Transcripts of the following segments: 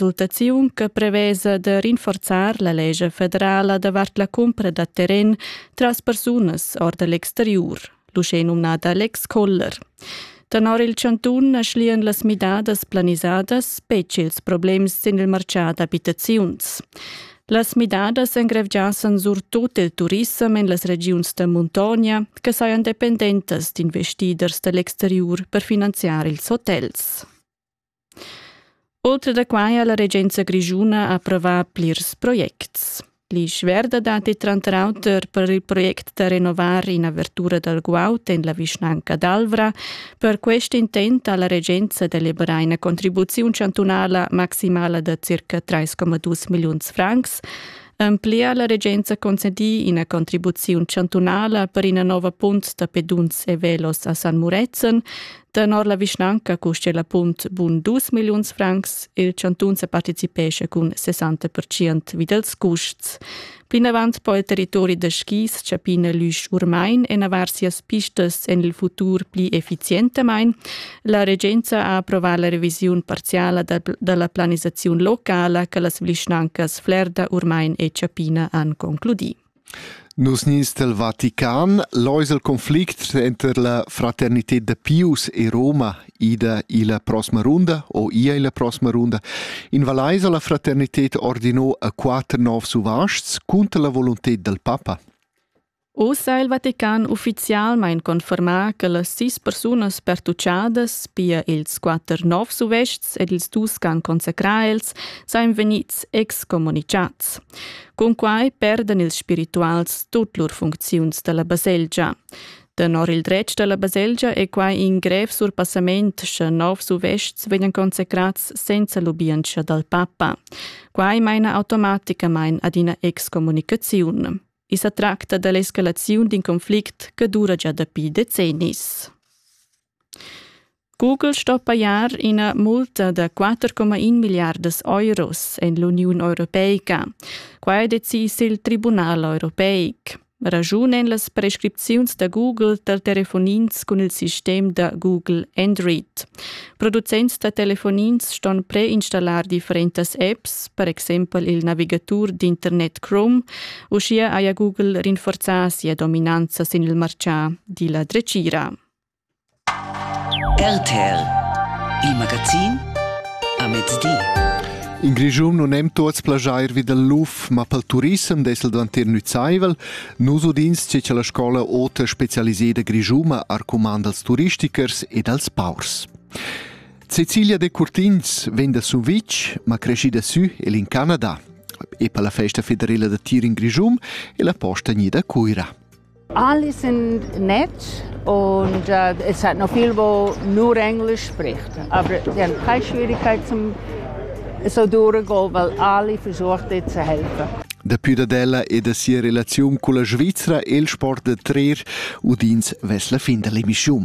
valutaziun che prevesa da rinforzar la legge federala davart la cumpra da terren tras persunas or da l'exteriur, l'uschè numnada l'ex Koller. Tenor il chantun schlian las midadas planisadas betg ils problems sin il martgà d'abitaziuns. Las midadas engrevgiassan surtut il turissem en las regiuns da muntogna che sajan dependentas d'investiders da l'exteriur per finanziar ils hotels. Oltre da quai ha la regenza grischuna approvà plirs projects. L'isch-verda datti tranter auter per il project da renovar in'avertura dal guaud en la vischnanca d'Alvra. Per quest intent ha la regenza deliberà ina contribuziun chantunala maximala da circa 3,2 milliuns francs. En pli ha la regenza concedì ina contribuziun chantunala per ina nova punt da peduns e velos a San Murezzan, Tenor la vischnanca custia la punt bun dus milliuns francs, il chantun sa participescha cun 60% vi dels custs. Plinavant po il territori da skis chapina l'üsch urmain e navar sias pistas en il futur pli efficientamain. La regenza ha approvà la revisiun parziala dalla planisaziun locala che las vischnancas Flerda, Urmain e Chapina han concludì. Nus nins dal Vatican lais il conflict tranter la fraternited da Pius e Roma ida illa prossima runda o ia illa prossima runda. In Valaisa la fraternited ordinò a quatter novs uvaschs cunter la volunted dal papa. Oz ha il Vatican ufficialmain confermà che las sis persunas pertuchadas, pia ils quatter novs uvests ed ils dus ch'han consacrà els, sajan vegnids excommunichats. Cunquai perdan ils spirituals tut lur funcziuns dalla baselgia. Tenor il dretg dalla baselgia è quai in grev surpassament, sche novs uvests vegnan consecrats senza lubientscha dal papa. Quai maina automaticamain ad ina excommunicaziun. I sa tracta da l'escalaziun d'in conflict che dura già dapi decennis. Google sto pajar ina multa da 4,1 milliardas euros en l'Uniun Europeica. Quai decis il Tribunal europeic. Ragiunen las prescripziuns da Google da telefonins cun il sistem da Google Android. Producents da telefonins ston preinstallar differentas apps, per exempel il navigatur d'internet Chrome. Uschia haja Google rinforzà sia dominanza sin il martgà, di la dretgira. RTL Il magazin a mezdi. In Grischun non hem tuots plajair vi dal luf, ma pel turissem dessel dvantir nüzaivel. Nus udins che cha la scola ota specialiseda grischuma arcumanda als turistichers ed als paurs. Cecilia de Curtins vegn da Sumvitg, ma creschida sü el in Canada. E per la festa federela da tir in Grischun è la posta gnida a Cuira. Alice in Netz und äh, es hat noch viel, wo nur Englisch spricht. Aber sie haben keine Schwierigkeiten so durchzugehen, weil alle versucht jetzt zu helfen. Dapi dad ella e da sia relaziun culla Svizra el sport da trer udins vess la fin dalla emissiun.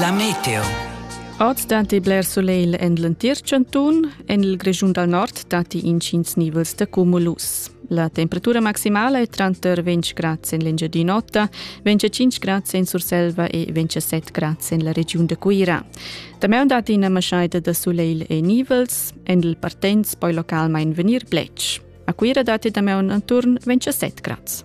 La meteo. Ord datti bler solegl en l'entir chantun. En il Grischun dal nord datti intgins nivels da cumulus. La temperatura maximala è tranter 20 grads en l'Engiadin'Ota, 25 grads en Surselva e 27 grads en la regiun da Cuira. Damaun datti ina maschaida da solegl e nivels. En il Partens poi localmain vegnir bletsch. A Cuira datti damaun attorn 27 grads.